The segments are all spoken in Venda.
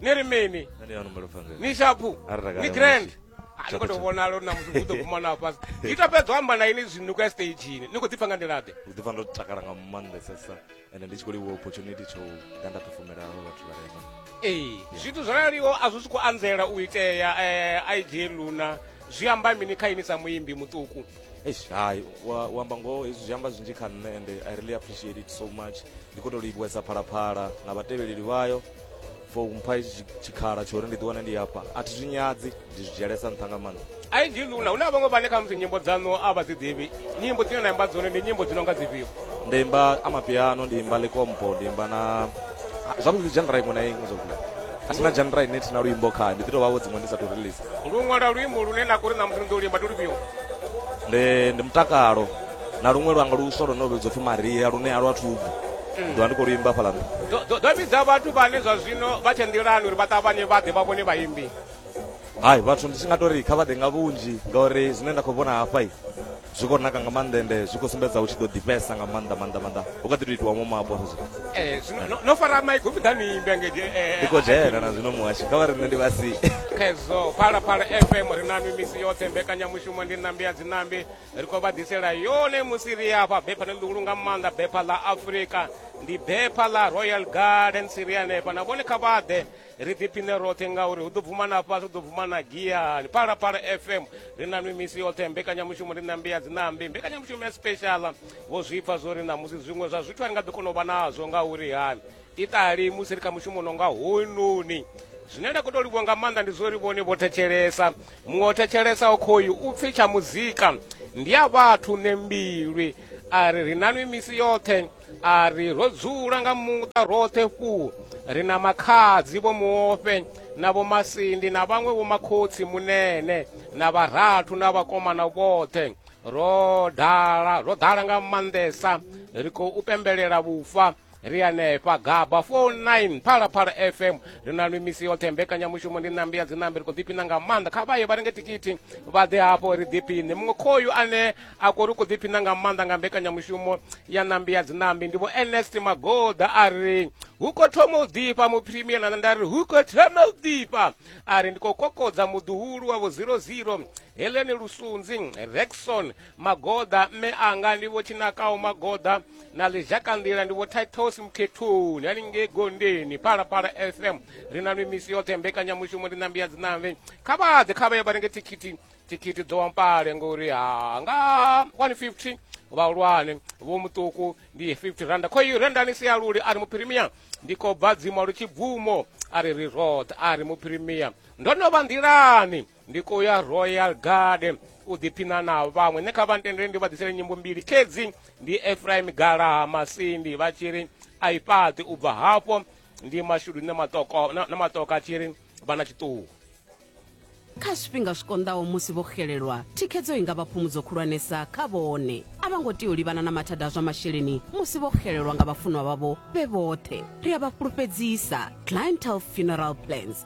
ni ri mini Nṋe ndi ya numbelo pfanzela. ni shapu Ari takale ni grand musi. Ah, ni khou tou vhonala uri na muthu u ḓo guma na fhasi ni to fhedza u amba na ini zwino ni khou ya stagini ni khou ḓipfa nga nḓila ḓe ndi ḓipfa ndo takala nga maanḓesesa ende ndi tshi khou livhuwa opportunity tsho ḓa nda pefomela havha vhathu vharema ee zwithu zwo raliho a zwi sokou anzela u itea um ig luna zwi amba mini kha ini sa muimbi muṱuku eish hayi wa- u amba ngoho hezwi zwi amba zwinzhi kha nṋe ende i really appreciate it so much ndi khou tou livhuwesa phalaphala na vhatevheleli vhayo for mpha itshi tshikhala tsho uri ndi ḓiwane ndi hafha a thi zwi nyadzi ndi zwi dzhielesa nṱha nga maanḓa ai ndi lula hu na vhaṅwe vhane kha musi nyimbo dzaṋu a vha dzi ḓivhi nyimbo dzine na imba dzone ndi nyimbo dzi no nga dzifhio ndi imba amapiano ndi imba likompo ndi imba na zwavhuḓi dzhenra iṅwe na iṅwe zwavhuḓi a thina dzhenra ine thina luimbo khayo ndi ḓi tou vhavho dziṅwe ndi sa tou release ndi u ṅwala luimbo lune na kho uri na musi ni ḓo limba ndi lufhio ndi ndi mutakalo na luṅwe luanga luswa lune lu vhidzwa pfhi maria lune a lwa thubvu mm. ḓovha ndi khou lu imba fhaḽa nṱha ḓo vhidza vhathu vhane zwa zwino vha tshe nḓilani uri vha ṱavhanye vha ḓe vha vhone vhaimbi hai vhathu ndi tshi nga tori kha vha ḓe nga vhunzhi ngauri zwine nda khou vhona hafha zwi khou naka nga maanḓa ende zwi khou sumbedza u tshi ḓo ḓifhesa nga maanḓa maanḓa maanḓa u kha ḓi to itiwa momapo eh, no fara maiki u vhiḓa niimbe ndi eh, eh, khou dzhena na zwino muhashi kha vha ri nṋe ndi vhasi khezwo phalaphala fm ri na mimisi yoṱhe mbekanyamushumo ndi nambi ya dzinambi ri khou vha ḓisela yone musi ri afha bepha no ḽihulu nga maanḓa bepha ḽa afurika ndi bepha ḽa royal garden si ri hanefha na vhone kha vha ḓe ri ḓiphine roṱhe ngauri hu ḓo bvuma na fhasi hu ḓo bvuma na giyani phalaphala fm ri na nwi misi yoṱhe mbekanyamushumo ri nambi ya dzinambi mbekanyamushumo ya speciala vho zwipfa zwo ri ṋamusi zwiṅwe zwa zwithu a ri nga ḓi kona u vha nazwo ngauri hani Iṱali musi ri kha mushumo no nga hoyunoni zwine nda khou tou livhuwa nga maanḓa ndi zwo ri vhone vho thetshelesa muṅwe o thetshelesa okhoyu u pfhi tsha muzika ndi a vhathu ne mbilwi a ri ri nanwi misi yoṱhe a ri ro dzula nga muṱa roṱhe fhuu ri na makhadzi vho muofhe na vho masindi na vhaṅwe vho makhotsi munene na vharathu na vhakomana vhoṱhe ro dala ro dala nga maanḓesa ri khou pembelela vhufa ri hanefha gaba 49 phalaphala fm ri na lwi misi yoṱhe mbekanyamushumo ndi nambi ya dzinambi ri khou ḓiphina nga maanḓa kha vha ye vha renge tikiti vha ḓe hafho ri ḓiphine muṅwe khoyu ane a kori u khou ḓiphina nga maanḓa nga mbekanyamushumo ya nambi ya dzinambi ndi vho ernest magoda a ri hu khou thoma u ḓifha mupremier na nda ri hu khou thoma u ḓifha a ri ndi khou kokodza muḓuhulu wa vho 00 heleni lusunzi rexon magoḓa mme anga ndi vho tshinakaho magoḓa na ḽizhakanḓila ndi vho titus mukhethoni haningei gondeni phalaphala fm ri na mimisi yoṱhe mbekanyamushumo ndi nambi ya dzinambe kha vhaḓe kha vha ye vha renge thikhithi thikhithi dzo wampale ngori ha nga 150 vhahulwane vho muṱuku ndi 50 randa kho i rendani sialuli a ri muphirimia ndi khou bva dzimwa lu tshibvumo a ri ri roṱhe a ri muphirimia ndo no vha nḓilani ndi khou ya royal guard u ḓiphina na vhaṅwe nṋe kha vha ntendele ndi vha ḓisele nyimbo mbili khedzi ndi efraim galaha masindi vha tshi ri a i fhaṱi u bva hafho ndi mashudu na maṱoka a tshi ri vha na tshiṱuhu kha zwifhinga zwi konḓaho musi vho xelelwa thikhedzo i nga vha phumudzo khulwanesa kha vhone a vha ngo tea u livhana na mathada a zwa masheleni musi vho xelelwa nga vhafunwa vhavho vhe vhoṱhe ri a vha fhulufhedzisa clientel funeral plans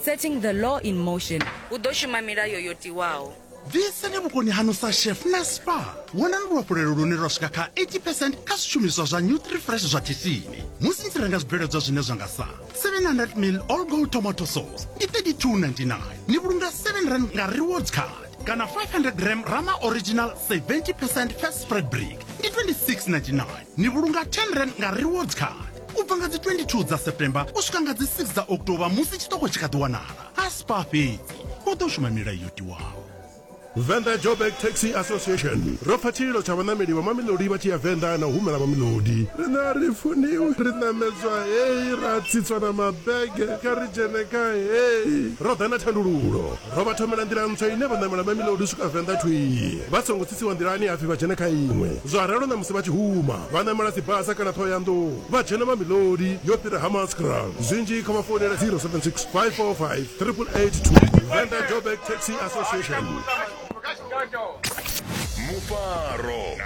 Setting the law in motion. Hu ḓo shuma milayo yo tiwaho. Ḓisani vhukoni haṋu sa chef na spa. Vhonani luhafhulelo lune lwa swika kha 80 percent kha zwishumiswa zwa Nutrifresh zwa tshitshini. Musi ni tshi renga zwibveledzwa zwine zwa nga sa 700 mil all gold tomato sauce ndi 32.99 ni vhulunga 7 rand nga rewards card kana 500 gram rama original 70 percent fast spread brick ndi 26.99 ni vhulunga 10 rand nga rewards card u bva nga dzi 22 dza september u swika nga dzi 6 dza october musi tshiṱoko tshi kha ḓi wanala a spa fhedzi u ḓo shuma milayo yo tiwaho Venḓa Joburg Taxi Association ro pfa tshililo tsha vhaṋameli vha Mamelodi vha tshi ya Venḓa na u humela Mamelodi. Riṋe a ri funiwi, ri ṋamedzwa hei, ra tsitswa na mabege, kha ri dzhene kha hei. Ro ḓa na thandululo. Ro vha thomela nḓila ntswa ine vha ṋamela Mamelodi u swika Venḓa thwii vha songo tsitsiwa nḓilani ha pfi vha dzhene kha iṅwe. Zwa ralo na musi vha tshi huma vha ṋamela Tsibasa kana Ṱhohoyanḓou vha dzhena Mamelodi yo fhira Hammanskraal. Zwinzhi kha vha founele 0765458882. Venḓa Joburg Taxi Association. Mufaro.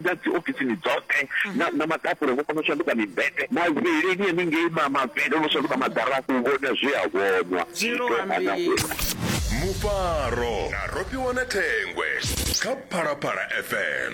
na dzi ofisini dzoṱhe na na maḓapule vho kona u shanduka mibete mavheleni haningei ma mavhele no shanduka maḓara u vhona zwi a vhonwa zwi to ana uri mufaro na rofhiwa na thengwe kha phalaphala fm